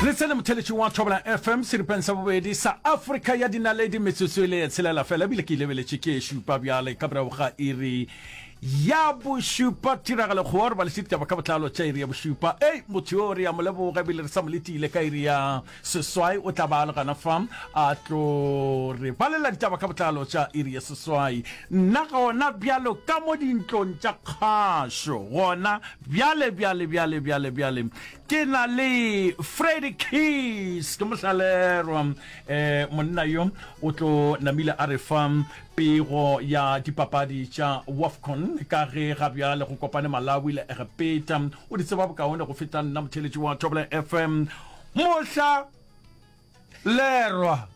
le tsene motheletšing wa thobela fm seripeng sa bobedi sa afrika ya dinaledi metsotso e le tshelela fela ebile ke lebeletše ke šupa bjale ka morago ga iri ya bošupa tiragalo kgoa re balešitse ditaba ka botlalo tša iri ya bošupa ei motho yo re ya mo leboga ebile re sa mo letile ka iri ya seswai o tla ba le gana fa a tlo re balela ditaba ka botlalo tša iri ya seswai nna gona bjalo ka mo dintlong tša kgašo gona Bjale, bjale, bjale, bjale, bjale, ke na le Freddy Keys, ke mohlalelwa eh, monna yo o tlo namile a re fa pego ya dipapadi tša WAFCON ka ge ga bjale go kopane Malawi le Egepeta. O di tseba bokaone go feta nna motheletši wa Thobela FM mohla Lerwa.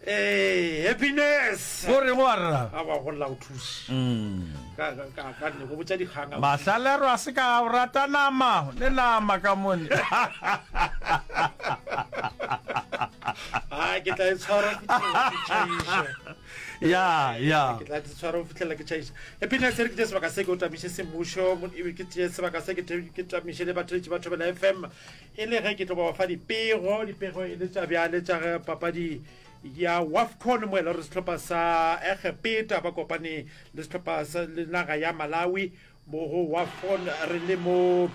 Ee, happiness. O reng wa rra? A wa go lla o thusi. Mm. Ka ka ka ka ne go botsa dikgang. a- Mahlalero a se ka o rata nama le nama ka mone. Ah, ke tla e tshwara go fitlhela ke tšhaisa. Ya, ya. ke tla di tshwara go fitlhelela ke tšhaisa happiness re ke tse sebaka se ke o tamiše semmušo mo- e be ke tšee sebaka se ke te- ke tamiše le batheletši ba thobela fm E le ge ke tlo ba ba fa dipego, dipego e le tša bjale tša ge papadi ya WAFCON mo e le gore sehlopha sa Egepeta ba kopane le sehlopha sa le naga ya Malawi mo go WAFCON re le mo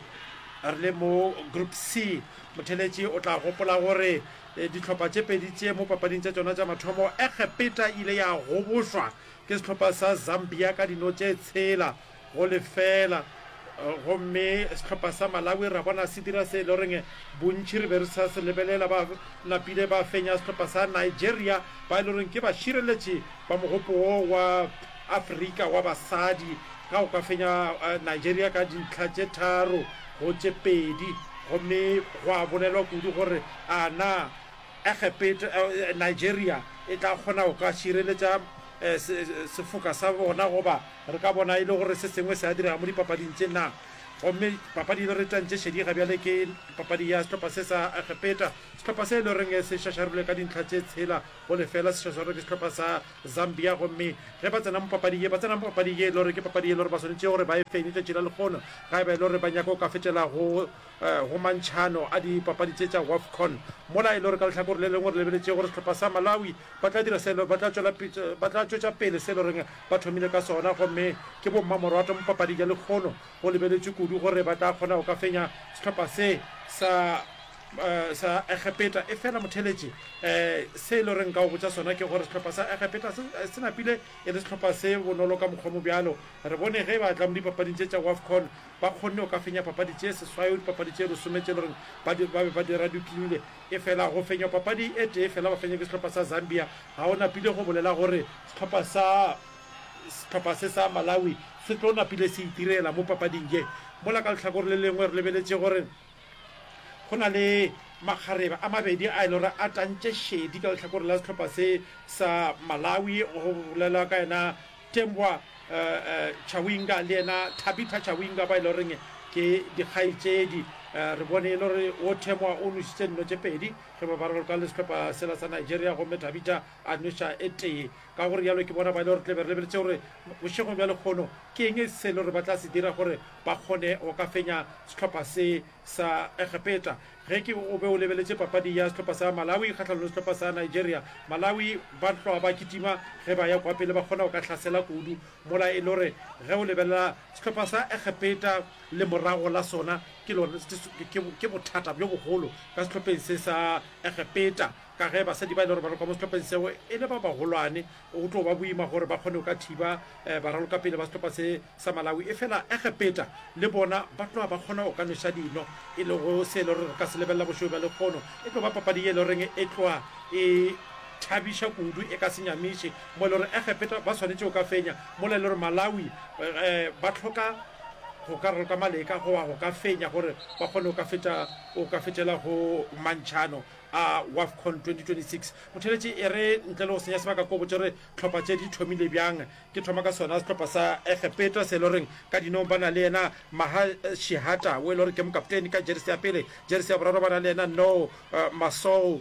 re le mo Group C. Motheletši o tla gopola gore eh, dihlopha tše pedi tše mo papading tša tšona tša mathomo Egepeta e ile ya goboswa ke sehlopha sa Zambia ka dino tše tshela go lefela gomme sehlopha sa Malawi ra bona se dira se e le goreng bontši re be re sa se lebelela ba napile ba fenya sehlopha sa Nigeria ba e le goreng ke bašireletši ba mogopo wo wa Afrika wa basadi ka go ka fenya eh, Nigeria ka dintlha tše tharo go tše pedi gomme go a bolelwa kudu gore a na Egepeto, Nigeria, e tla kgona go ka šireletša sefoka sa bona goba re ka bona e le gore se sengwe se a direga mo dipapading tše na. Gomme papadi e le re tantše šedi ga bjale ke papadi ya sehlopha se sa Egepeta, sehlopha se e le goreng se šašarilwe ka dintlha tše tshela go lefela, se šašarilwe ke sehlopha sa Zambia. Gomme ge ba tsena mo papadi ye, ba tsena mo papadi ye e le gore ke papadi e le gore ba swanetše gore ba e fenye tšatši la lekgono ga e ba e le gore ba nyaka go ka fetšela go Go mantšhano a dipapadi tše tša Wafcon, mola e le gore ka lehlakore le lengwe re lebeletše gore sehlopha sa Malawi ba tla dira se ba tla tšwela ba tla tšwetša pele se e le goreng ba thomile ka sona gomme ke bommamorwato mo papading ya lekgono. Go lebeletšwe kudu gore ba tla kgona go ka fenya sehlopha se sa sa Egepeta efela motheeletši se e le gore nka go botša sona ke gore sehlopha sa Egepeta se se napile e le sehlopha se bonolo ka mokgwa mo bjalo. Re bone ge ba tla mo dipapading tše tša Wafcon Ba kgonne go ka fenya papadi tše seswai go dipapadi tše lesome tše e le goreng ba di ba be ba di radukilile. Efela go fenywa papadi e tee fela ba fenywa ke sehlopha sa Zambia, ga go napile go bolela gore sehlopha sa sehlopha se sa Malawi se tlo napile se itirela mo papading ye. Mola ka lehlakore le lengwe re lebeletše gore go na le makgarebe a mabedi a e le gore a tantše šedi ka lehlakore la sehlopha se sa Malawi, go bolelwa ka yena Tembwa Chawinga le yena Thabitha Chawinga ba e le goreng ke dikgaetšedi. Re bone e le gore wo Temwa o nošitše nno tše pedi ge ba barolka le sehlopha sela sa Nigeria gomme Thabitha a noša e tee. Ka go realo ke bona ba e le gore re tla be re lebeletše gore bošegong bja lekgono ke eng se e le gore ba tla se dira gore ba kgone go ka fenya sehlopha se sa Egepeta. Ge ke o be o lebeletše papadi ya sehlopha sa Malawi kgahlanong le sehlopha sa Nigeria, Malawi ba hlwa ba kitima ge ba ya kwa pele, ba kgona go ka hlasela kudu. Mola e no re ge o lebelela sehlopha sa Egepeta, lemorago la sona ke lona, ke, ke bothata bjo bogolo ka sehlopheng se sa Egepeta, ka ge basadi ba e le gore ba le kwa mo sehlopheng seo e le ba bagolwane, Go tlo ba boima gore ba kgone go ka thiba baralokapele ba sehlopha se sa Malawi, efela Egepeta le bona ba tloga ba kgona go ka nweša dino, e lego se e le gore re ka se lebelela bošego bja lekgono. E tlo ba papadi ye e le goreng e tloga e thabiša kudu, e ka se nyamiše, mo e le gore Egepeta ba swanetše go ka fenya, mola e le gore Malawi ba hloka go ka raloka maleka goba go ka fenya gore ba kgone go ka fetša, go ka fetšela go mantšhano. a Wafcon 2026. Phutheletše e re, Ntle le go senya sebaka ko botše re tlhopha tše di thomile bjang, ke thoma ka sona sehlopha sa Egepeta se e le gore ka dinong ba na le yena Maher Shehata wo e le gore ke mokapteni ka jeresi ya pele, jeresi ya boraro ba na le yena Nour Massour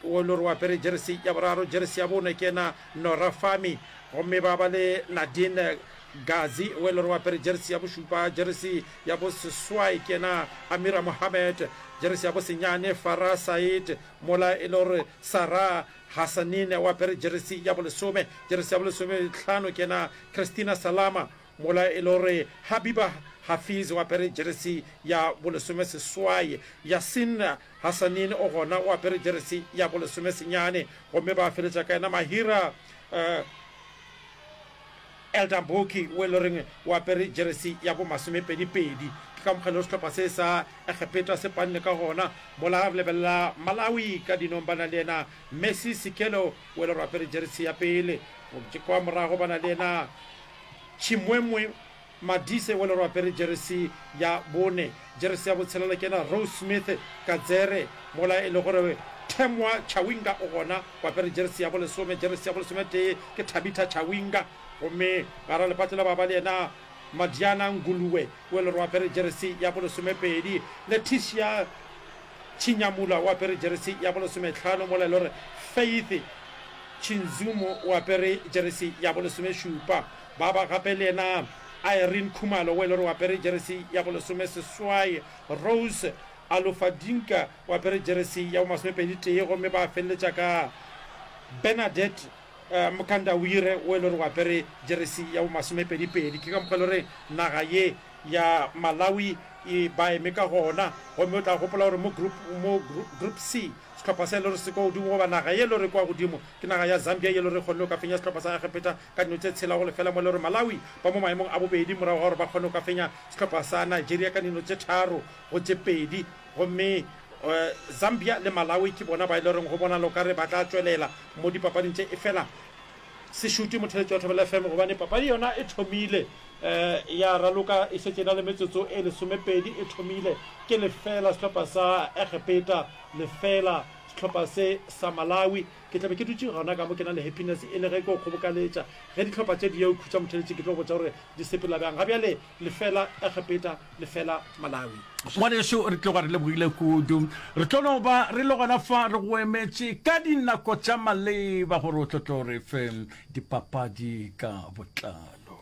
wo e le gore o apere jeresi ya boraro, jeresi ya bone ke yena Noura Fahmy gomme ba ba le Nadine Ghazi wo e le gore o apere jeresi ya bošupa, jeresi ya bo seswai ke yena Amira Mohammed, jeresi ya bo senyane Farah Said, mola e le gore Sarah Hassanin o apere jeresi ya bo lesome, jeresi ya bo lesome tlhano ke yena Christina Salama, mola e le gore Habiba Hafiz o apere jeresi ya bo lesome seswai, Yassin Hassanin o gona o apere jeresi ya bo lesome senyane, gomme ba feletša ka yena Mahira eh, Elder Mbhoki wo e le goreng o apere jeresi ya bo masomepedi-pedi. Ke ka mokgwa e lego sehlopha se sa Egepeta se panne ka gona. Mola re lebelela Malawi ka dinong ba na le yena Mercy Sikhelo wo e le gore o apere jeresi ya pele. Kwa morago ba na le yena Chimwemwe. Madise wele re apere jeresi ya bone. Jeresi ya botshelela ke ena Rose Smith Kadzere mola e le gore Temwa Chawinga o gona o apere jeresi ya bolesome. Jeresi ya bolesometee ke Thabitha Chawinga gomme gare lepatlo la babali ena Madiana Nguluwe wele re apere jeresi ya bolesomepedi. Leticia Chinyamula o apere jeresi ya bolesometlhano mola e le gore Faith Chinzumu o apere jeresi ya bolesomešupa. Ba ba gape le yena Irene Khumalo o e le gore o apere jeresi ya bolesome seswai, Rose Alufadinka o apere jeresi ya bomasomepedi tee gomme ba feleletša ka Bernadette Mkandawire o e le gore o apere jeresi ya bomasomepedi pedi. Ke ka mokgwa e le gore naga ye ya Malawi e ba eme ka gona gomme o tla gopola gore mo group mo group C sehlopha se e le gore se kwa godimo goba naga ye e le gore e kwa godimo ke naga ya Zambia ye e le gore e kgonne go ka fenya sehlopha sa Egepeta Ka dino tse tshela go lefela mo lero Malawi ba mo maemong a bobedi morago ga gore ba kgone go ka fenya sehlopha sa Nigeria ka dino tse tharo go tse pedi gomme Zambia le Malawi ke bona ba e loreng go bonala o ka re ba tla tšwelela mo dipapading tše efela se šute motheletši wa Thobela FM gobane papadi yona e thomile ya raloka e šetše e na le metsotso e lesomepedi e thomile ke lefela sehlopha sa Egepeta lefela sehlopha se sa Malawi Ke tla be ke dutše gona ka mo ke na le happiness e le ge ke go kgobokaletša. Ge dihlopha tše di ya go khutša motheletši ke tlo go botša gore di sepela bjang. Ga bjale le fela Egepeta, le fela Malawi. Ngwanešu, re tloga re lebogile kudu. Re tlo no ba re le gona fa re go emetše ka dinako tša maleba gore o tlo tlo re fe dipapadi ka botlalo.